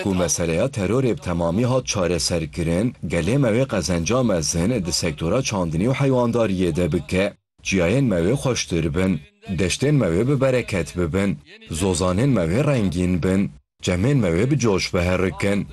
Ku meseleya terorê bi temamî hat çareserkirin, gelê me wê qezenca mezin di sektora çandinî û heywandariyê de bike. Çiyayên me wê xweştir bin, deştên me wê bi bereket bibin, zozanên me wê rengîn bin, çemên me wê bi coş biherikin.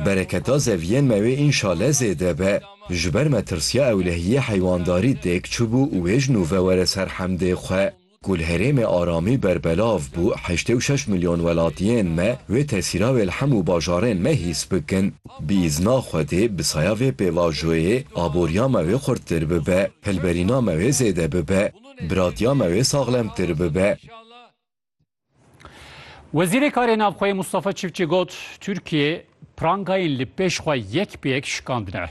Bereketa zeviyên me wê înşale zêde be. Ji ber me tirsiya ewlehiyê heywandarî têk çibû û wê ji nû ve were ser hemdê xwe. Ku li herêmê aramî berbelav bû, heştê û şeş milyon welatiyên me wê tesîra wê li hemû bajarên me hîs bikin. Bi îzna Xwedê, bi saya vê pêvajoyê, aboriya me wê xurttir bibe, hilberîna me wê zêde bibe, biratiya me wê saxlemtir bibe. Wezîrê Karê Navxweyê Mustafa Çiftçi got, Tirkiye prangayên li pêş xwe yek bi yek şikandine.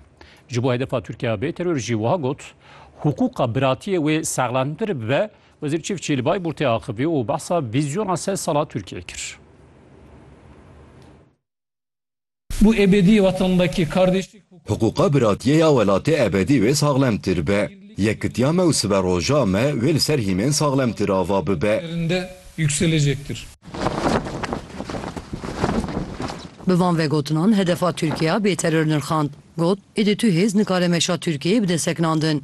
Ji bo hedefa Tirkiye bê teror jî wiha got, Hiqûqa biratiyê wê saxlantir bibe, Wezîr Çiftçi li Bayburtê axivî û behsa vîzyona sed sala Tirkiyeyê kir. Bû ebedî wetanbekî, kardêşî. Hiqûqa biratiyê ya welatê ebedî wê saxlemtir be. Yekitiya me û sibe roja me wê li ser hîmên saxlemtir ava bibe. Derinde yukselecektir. Bi van vegotinan hedefa Tirkiya bêteror nirxand. Got, Êdî tu hêz nikare meşa Tirkiyeyê bide sekinandin.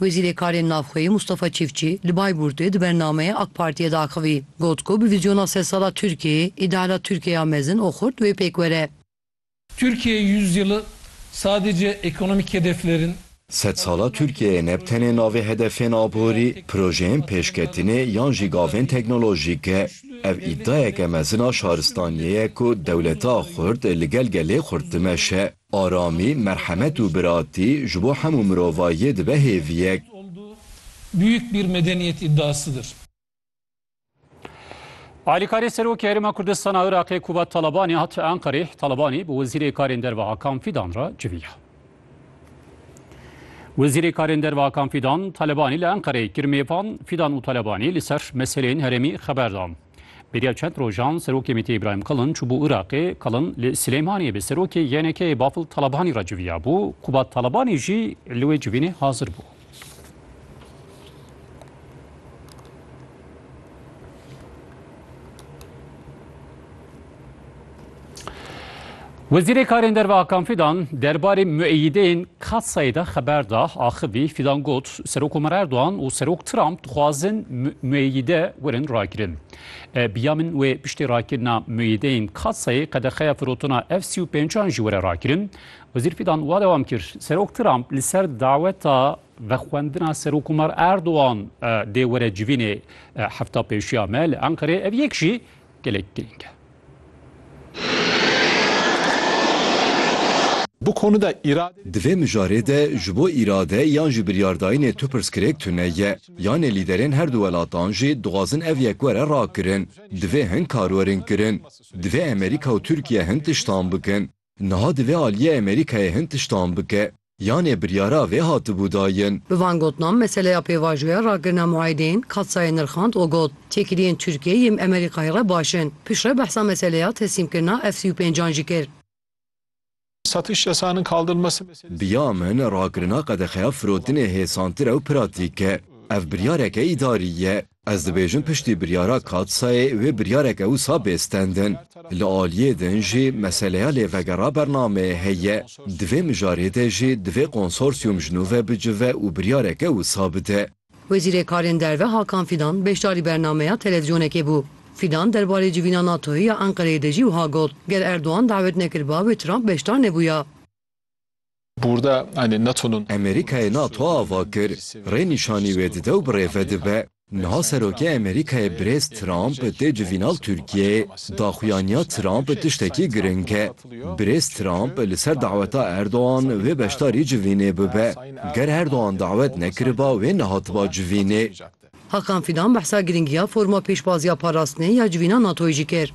Wezîrê Karên Navxweyî Mustafa Çîfçî li Bayburtê di bernameyê AK Partiyê de axivî. Got ku bi vîzyona sed sala Tirkiyeyê, îdeala Tirkiye ya mezin û xurt wê pêk were. Türkiye Yüzyılı sadece ekonomik hedeflerin. Sed sala Tirkiyeyê ne bi tenê navê hedefên aborî, projeyên pêşketinê yan jî gavên teknolojîk e. Ev îdayeke mezin a şaristaniyê ye ku dewleta xurt li gel gelê xurt dimeşe. Aramî, merhemet û biratî ji bo hemû mirovayiyê dibe hêviyek. Büyük bir medeniyet iddiasıdır. Alîkarê Serokê Herêma Kurdistan a Iraqê Kubat Talabanî hat Enqerê, Talabanî bi Wezîrê Karên Derve Hakan Fîdan re civiya. Wezîrê Karên Derve Hakan Fîdan, Talabanî li Enqereyê kir mêvan, Fîdan û Talabanî li ser meseleyên herêmî xeber dan. Beriya çend rojan Serokê MHP'ê Îbrahîm Kalin çûbû Iraqê. Kalin li Silêmaniyê bi Serokê YNK'ê Bafil Talabanî re civiyabû. Kubat Talabanî jî li wê civînê hazir bû. Wezîrê Karên Derve Hakan Fidan derbarê mueyîdeyên Katsayê de xeber da. Axivî Fidan got, Serokomar Erdogan û Serok Trump dixwazin mueyîde werin rakirin. Bi ya min wê piştî rakirina mueyîdeyên Katsayê qedexeya firotina F sî û pêncan jî were rakirin. Wezîr Fidan wa dewam kir, Serok Trump li ser daweta vexwendina Serokomar Erdogan dê were civînê hefta pêşiya me li Enqerê. Ev yek jî gelek girîng e. Bu konuda irade. Di vê mijarê de ji bo îrade yan jî biryardayînê tu pirsgirêk tune ye. Yanê lîderên her du welatan jî dixwazin ev yek were rakirin. Divê hin kar werin kirin. Divê Emerîka û Tirkiye hin tiştan bikin. Niha divê aliyê Amerîkayê hin tiştan bike. Yanê biryara vê hatibû dayin. Bi van gotinan meseleya pêvajoya rakirina muayedeyên Katsayê nirxand û got, Têkiliyên Tirkiyeyê yêm Amerîkayê re baş in. Piştre behsa meseleya teslîmkirina F sî û pênc an jî kir. Biya min rakirina qedexeya firotinê hêsantir ew pratîk e. Ev biryareke îdarî ye. Ez dibêjim piştî biryara Katsayê wê biryareke wisa bê stendin. Li aliyê din jî meseleya lêvegera bernameyê heye. Di vê mijarê de jî divê konsorsiyum ji nû ve bicive û biryareke wisa bide. Wezîrê Karên Derve Hakan Fîdan beşdarî bernameya televîzyonekê bû. Fîdan derbarê civîna NATOyê ya Enqereyê de jî wiha got, Ger Erdogan dawet nekiriba wê Trump beşdar nebûya. Amerîkayê nato ava kir, rê nîşanî wê dide û bi rê ve dibe. Niha Serokê Amerîkayê Birêz Trump tê civînal Tirkiyeyê, daxuyaniya Trump tiştekî giring e. Birêz Trump li ser daweta Erdogan wê beşdarî civînê bibe. Ger Erdogan dawet nekiriba wê nehatiba civînê. Hakan Fidan behsa giringiya forma pêşbaziya parastinê ya civîna natoyê jî kir.